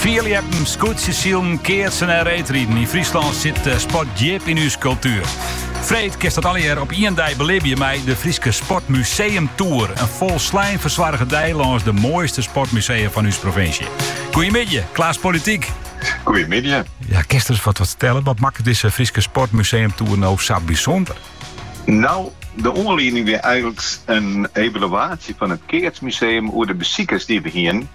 Fierljeppen, skûtsjesilen, keatsen en reedriden. Yn Fryslân sit eh, sport djip in ús kultuer. Freed kinst dat allegear op ien dei belibje mei de Fryske Sportmuseum Tour. In folslein fersoarge dei lâns de moaiste sportmusea fan ús provinsje. Goeiemiddei, Klaas Politiek. Goeiemiddei. Ja, kinst der ris wat, wat fertelle? Wat makket dizze Fryske Sportmuseum Tour no sa bysûnder? No, de oanlieding wie eigenlik in evaluaasje fan it Keatsmuseum oer de besikers dy't we hiene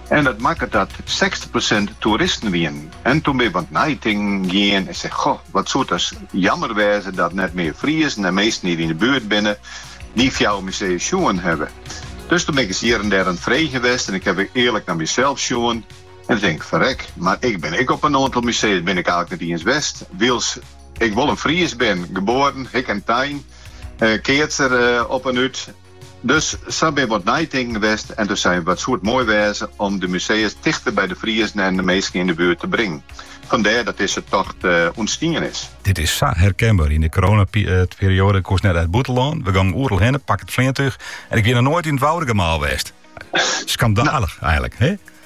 En dat makket dat sechstich persint toeristen wienen. En toen bin ik wat neitinken gien en seg, goh, wat soe it ris jammer wêze dat net mear Friezen en minsken dy't yn de buert binne dy fjouwer musea's sjoen hawwe. Dus toen bin ik ris hjir en dêr oan it freegjen west en ik haw ek earlik nei mysels sjoen en dan tink ik, ferrek, mar ik bin ek op in oantal musea's bin ik eigenlik net iens west, wylst ik wol in Fries bin, geboren, hikke en tein, keatser op en út. Dus sa bin wat neitinken west en doe sein, wat soe it moai wêze om de musea's tichter by de Friezen en de minsken yn de buert te bringen. Fandêr dat dizze tocht ûntstien is. Dit is sa herkenber. Yn de coronaperiode koest net nei it bûtenlân. We gongen oeral hinne, pak it fleantúch en ik wie noch noait yn it Woudagemaal west. Skandalich, eigenlik, hé?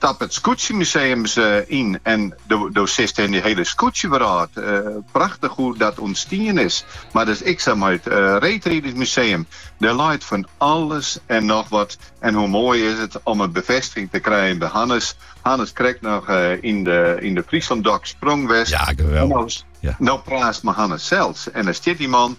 Stap it Skûtsjemuseum ris yn en do sitst yn de hiele skûtsjewrâld. Prachtich hoe't dat ûntstien is. Mar dat is ek sa mei it Reedridersmuseum. Der leit fan alles en noch wat. En hoe moai is it om in befêstiging te krijen by Hannes. Hannes krekt noch yn de Fryslân Dok sprong west. Ja, geweldig. No praatst mei Hannes sels en dan stiet dy man.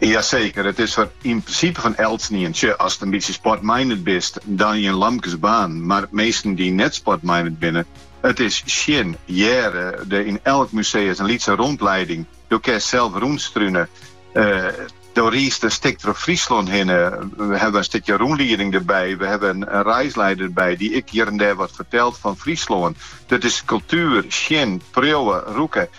Jaseker, it is der yn prinsipe foar elkenien. Sjoch, ast in bytsje sportminded bist, dan in lampke baarn, mar minsken dy't net sportminded binne, it is sjen. Hearre do yn elk museus in lytse rûnlieding. Do kinst sels rûnstrune. Do riist in stik troch Fryslân hinne. We hawwe in stikje rûnlieding derby. We hawwe in reislieder derby dy't ek hjir en dêr wat fertelt fan Fryslân. Dat is kultuer, sjen, priuwe, rûke.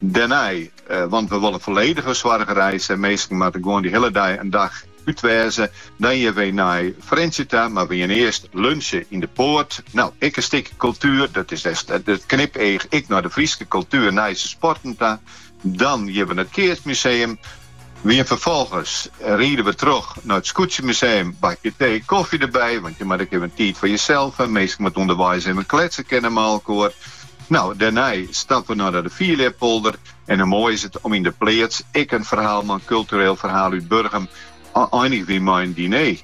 Dêrnei, want we wolle folledich fersoarge reis en minsken moatte gewoan dy hiele dei in dag út wêze, dan geane we nei Frjentsjer ta, mar we geane earst lunsje yn De Poarte. No, ek in stikje kultuer, dat is it knipeach, ek nei de Fryske kultuer, nei de sporten ta. Dan geane we nei it Keatsmuseum. Wy ferfolgens ride we troch nei it Skûtsjemuseum, bakje tee, kofje derby, want je moatte ek even tiid foar josels ha, minsken moatte ûnderweis even kletse kinne mei elkoar. No, dêrnei stappe we nei de fierljeppolder en hoe moai is it om yn de pleats ek in ferhaal mei in kultureel ferhaal út Burgum, einige we mei in diner.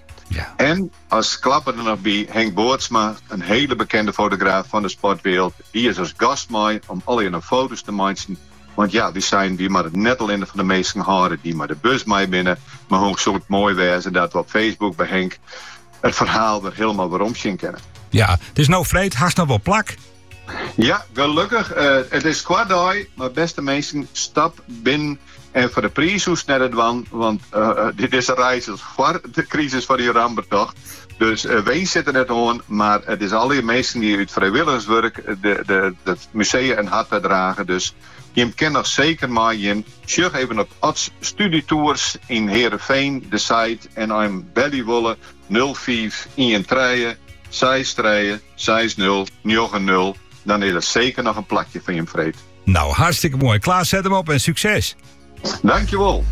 En as klapper der noch by, Henk Bootsma, in hiele bekende fotograaf fan de sportwrâld, dy is as gast mei om allegearre foto's te meitsjen Want ja, wy seinen we moatte it net allinne foar de minsken hâlde dy't mei de bus mei binne, mar hoe soe it moai wêze dat we op Facebook by Henk it ferhaal wer hielendal weromsjen kinne. Ja, it is no freed, hast noch wol plak? Ja, gelukkig. Eh, it is koart dei, mar beste minsken, stap binnen en foar de priis hoechst net te dwaan, want eh, eh, dit is in reis al foar de krisis fan Iran betocht. Dus eh, winst sit der net oan, mar it is alle minsken dy't út frijwilligerswurk de, de, de, Musea in hart tadrage dus. Jim kin noch seker meigean. Sjoch even op Ods Studytours yn Hearrenfean de site en as jim belje wolle nul fiif ien trije seis trije seis nul njoggen nul dan is der seker noch in plakje foar jim freed. Nou, hartstikke moai. Klaas, set him op en sukses! Dankjewol!